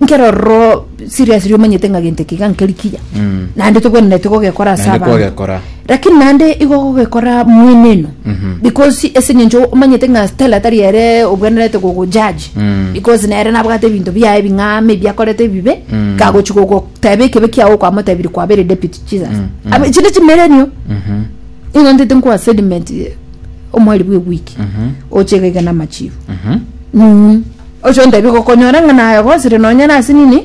nkero roro serious riria omanyete ng'a gento eke iga nkeri kiya naende togwenereti gogekora ase Naende abanto kwagekora. lakini naende igo gogekora mweneno because ase eng'encho omanyete ng'a stella tari ere obwenerete gogojaji Mm. because nere nabwate ebinto biaye bing'aama ebi akorete ebibe kagochi gogoteba ekebe kiago okwamotebirie kwabere deputy jesus Aba- echi ne chimerenio igo ntete nkoa sediment eh, omweri bwa ewiki oche iga iga na amachifu Mhm. Oche ontebie gokonyora ng'a naye ogosire nonya na ase nini,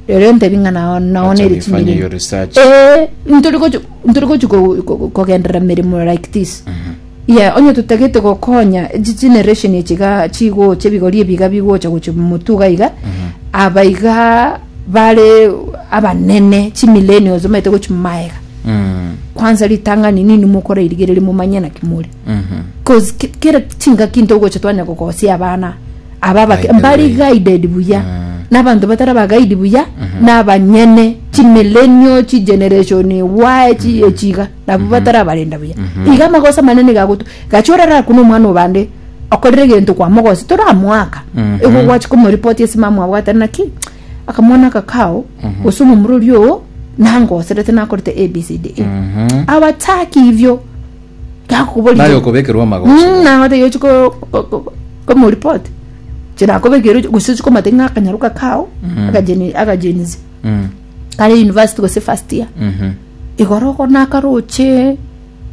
rirorio ontebie ng'a nao nao Acha nere we fanya chimilimo. your research. Eh, ntori gochi ntori gochi ko- ko- ko- kogenderera mirimo like this. Yeah, onye totagete gokonya chi generation echi iga chigocha ebigori ebi iga bigocha gochia motuga iga, aba iga bare abanene chi millennials bamaete gochia magega. Mm. Kwanza ritang'ani nini mokorerigereria momanye naki more. Mhm. cause ki- kera chingaki into gocha twanya gokosia abana aba By bake the mbari way. guided buya Mm. n'abanto batari abagaidi buya n'abanyene chimilenio chigeneration y chi echiga nabo batari abarenda buya iga amagosa manene gagotu gacha orara kuna omwana obande okorire egento kwamogosi toramoaka Mhm. igo gwachi komoripoti ase mama abo atari naki akamwana aka kao gose omomura oria oo nangoserete nakorete abcd Mhm. abataki ivyo Gakoboria. Naye okobekerwa amagoso. Mm, na ng'ote yochi ko ko- ko- komoreport. Chira akobekera ochi- gose ochi komate ng'a akanyaruka kao, akajeni akajenisi. Mm, Kare university gose first year. mhm. Igoro oko nakaroche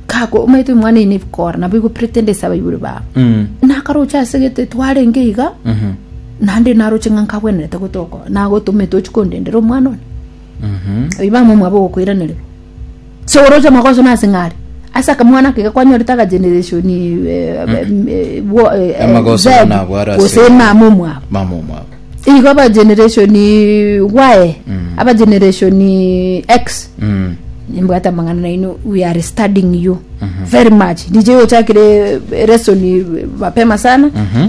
kako omanyete omwana ine bikora nabo igo pretend ase abaibori babo. Mm, Nakaroche ase gete twarenge iga mhm, nande naroche ng'a nkabwenerete gotoko nagotomete ochi kondendera omwana one. mhm. Oiba mwa mwabo gokoiranerwa. Seoroche amagoso nase ng'are. Ase akamwana ake gakwanyorete agageneration Amagoso Z nabware ase- gose mama omwabo mama omwabo igo abageneration y abageneration x Mm. nimbwate amang'ana naino we are studying you very much dj ochakire lesson mapema sana Mhm.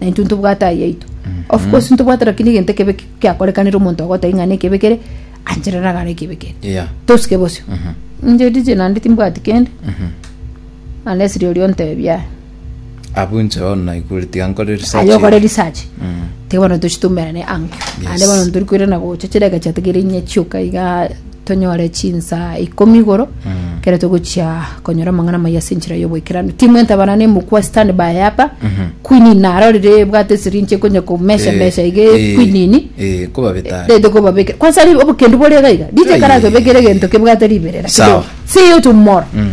na intwe ntobwate aya yaito of course ntobwate lakini egento ekebe ki- kiakorekanire omonto ogoteba ng'a nekebe kere anchera nagare ekebe kere Yeah. tosike bosio inche dije naende timbwati kende unless riria ontebia aya Abu nche bono naigure tiga nkore research. aye okore research Mm. tiga bono tochitumerane ankio Yes. ande bono ntori koirana gocha chireka chiatigere inye chioka iga tonyore chinsa ikomi igoro ekero togochia konyora amang'ana amaya ase enchera y'oboikeranu. Timu entabana na emokwa stand by apa quinini narorire ebwate esirinji ekonya komesha mesha iga equinini Eh, ko babeta are. rete kobabekera kwansa ri obokendu bore iga iga DJ Aye. karage bekere egento kebwate riberera Sawa. kidogo see you tomorrow Mm.